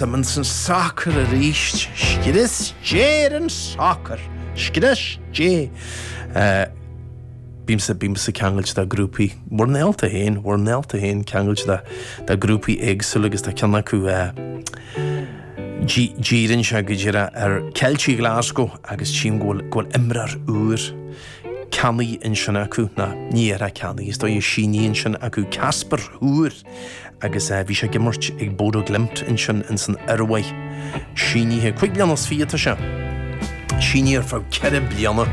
D'imigh an sacar arís. Scrios Dé ar an sacar. Scrios Dé. Bímse, bímse ceangailte dá grúpaí, bhur ndálta féin, bhur ndálta féin ceangailte dá, dá grúpaí éagsúla agus tá ceann acu, dí, díríonn sé go díreach ar Ceiltigh Glasgow agus tchím go bhfuil, go bhfuil imreoir úr ceannaithe ansin acu, ná, ní hé ceannaithe, is dóiche, sínithe ansin acu Kasper Høgh. agus bhí sé ag imirt ag Bodo Glimt ansin ins an Iorua. Sínithe cúig bliana is fiche atá sé. Sínithe ar feadh ceithre bliana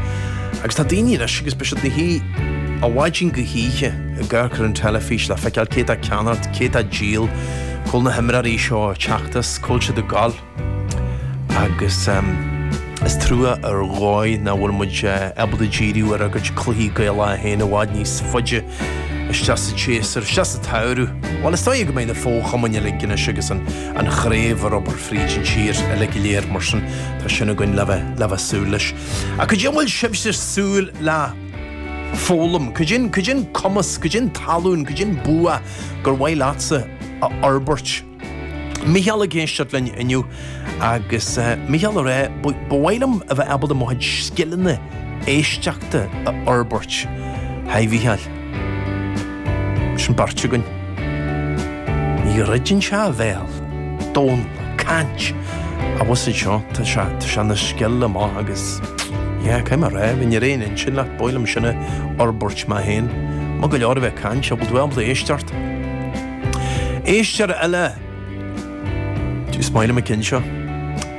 agus tá daoine anois agus beidh siad ina suí ó mhaidin go hoíche ag amharc ar an teilifís le feiceáil cé atá ag ceannacht, cé atá ag díol, cá bhfuil na himreoirí seo ag teacht is cá bhfuil siad ag gabháil. Agus is trua ar dhóigh nach bhfuil muid ábalta díriú ar ár gcuid cluichí Gaelacha a théann i bhfad níos faide isteach sa tséasúr, isteach sa tsamhradh. Bhuel is dóiche go mbeidh na fochumainn uilig anois agus an chraobh ar obair fríd an tír uilig go léir mar sin tá sin againn le bheith ag súil leis. Ach cad é a bhfuil sibhse ag súil le foghlaim, cad é an cumas, cad é an tallann, cad é an bua gur mhaith leatsa a fhorbairt? Micheál ag éisteacht linn inniu agus Micheál ag rá, ba mhaith liom a bheith ábalta mo chuid scileanna éisteachta a fhorbairt. Haigh a Mhícheáil. Sin beirt againn. Ní dhruideann sé a bhéal, Dónall ag caint abhus anseo, tá sé, tá sé ina scil amach agus yeah, caithfidh mé a rá, bheinn ar aon intinn leat, ba mhaith liom sin a fhorbairt mé féin. Maith go leor a bheith ag caint, an bhfuil tú ábalta éisteacht. Éisteoir eile! Is maith liom an ceann seo.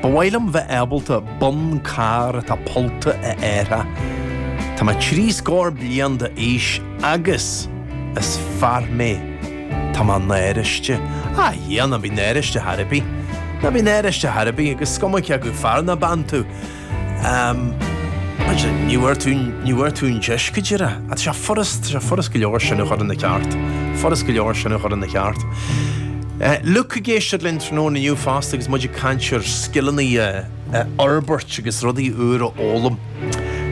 Ba mhaith liom bheith ábalta bonn cairr atá pollta a athrú. Tá mé trí scór bliain d'aois agus is fear mé. Tá mé náiriste. Á, Dhia, ná bí náiriste ar chor ar bith. Ná bí náiriste ar chor ar bith agus is cuma cé acu fear ná bean tú. Am, Muise, ní bhfuair tú, ní bhfuair tú an deis, go díreach. Á, tá sé furast, tá sé furast go leor sin a chur ina cheart, furast go leor sin a chur ina cheart. Luke ag éisteacht linn tráthnóna inniu fosta agus muid ag caint ar scileanna a fhorbairt agus rudaí úra a fhoghlaim.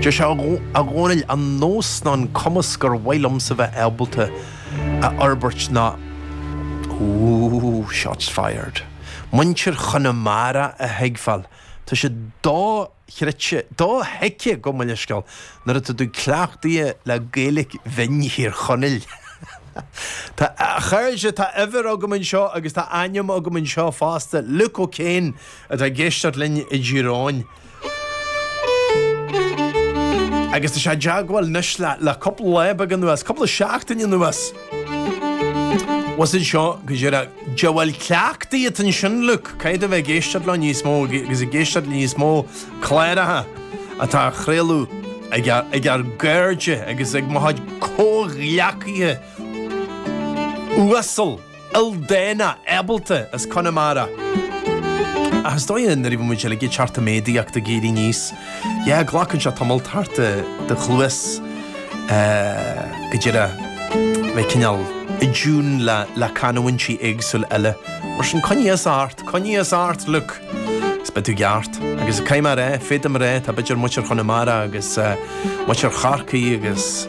Deir sé, A Dhónaill, an nós ná an cumas gur mhaith liomsa bheith ábalta a fhorbairt ná, ooh, shots fired, muintir Chonamara a thuigbheáil Tá sé dochreidte, dothuigthe go Mulliscal nuair atá tú cleachtaithe le Gaeilic bhinn Thír Chonaill. Tá, a chairde, tá uimhir agam anseo agus tá ainm agam anseo fosta, Luke O'Kane atá ag éisteacht linn i dTír Eoghain. Agus tá sé i dteagmháil anois le cúpla lá beag anuas, cúpla seachtaine anuas. Bhfuil a fhios agat seo go díreach? Bhuel cleachtadh atá ansin, Luke. Caithfidh a bheith ag éisteacht leo níos mó agus ag éisteacht le níos mó cláracha atá á chraoladh ag ár, ag ár gcairde agus ag mo chuid comhghleacaithe uasal, ildánach, ábalta as Conamara. Ach is dóigh nuair a bhí muid uilig ag teacht i méadaíocht ag éirí níos. Yeah, glacann sé tamall ar do chluas go díreach a bheith cineál i dtiún le canúintí éagsúil eile. Mar sin, coinnigh thusa ort, coinnigh thusa ort, Luc! Is beidh tú i gceart. Agus caithfidh mé a rá, féadaim a rá, tá b'fhéidir muintir Chonamara agus muintir Chorcaí agus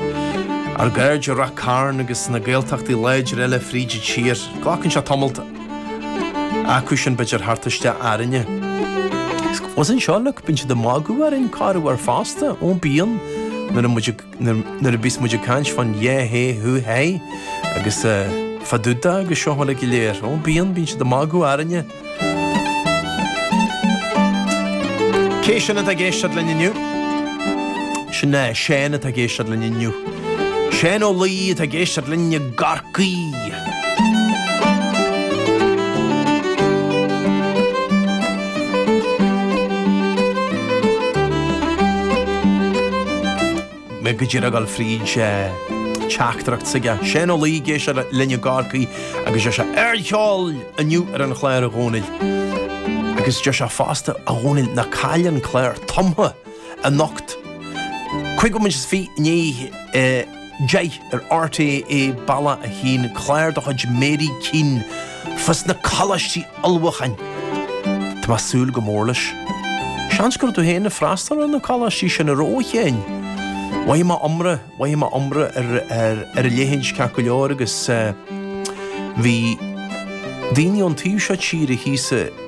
ár gcairde i Ráth Cairn agus na Gaeltachtaí láidir eile fríd an tír. Glacann sé tamall. Acu sin b'fhéidir teacht isteach orainne. Bhfuil a fhios agat seo, Luc, bíonn siad ag magadh orainn corruair fosta, ó bíonn, nuair a muid ag, nuair a bhíos muid ag caint fán yeah, hey, who, hey, agus fá dtaobh de agus seo uilig go léir, ó bíonn, bíonn siad ag magadh orainne. Cé sin atá ag éisteacht linn inniu? Sin Seán atá ag éisteacht linn inniu. Seán Ó Laoi atá ag éisteacht linn i gCorcaigh. Mé go díreach ag gabháil fríd teachtaireacht s'aige. Seán Ó Laoi ag éisteacht linn i gCorcaigh agus deir sé, 'Ardcheol inniu ar an chlár, a Dhónaill? Agus deir sé fosta, 'A Dhónaill, ná caill an clár Tumtha anocht. Cúig bhomaite is fiche i ndiaidh Deich ar RTÉ bealach a hAon clár de chuid Mary Keane fá na coláistí ullmhúcháin. Tá mé ag súil go mór leis. Seans go raibh tú féin ag freastal ar na coláistí sin i ró a chinn. Mhothaigh mé iomrá, mhothaigh mé iomrá ar a leithéid ceart go leor agus bhí daoine ón taobh seo tíre thíos sna.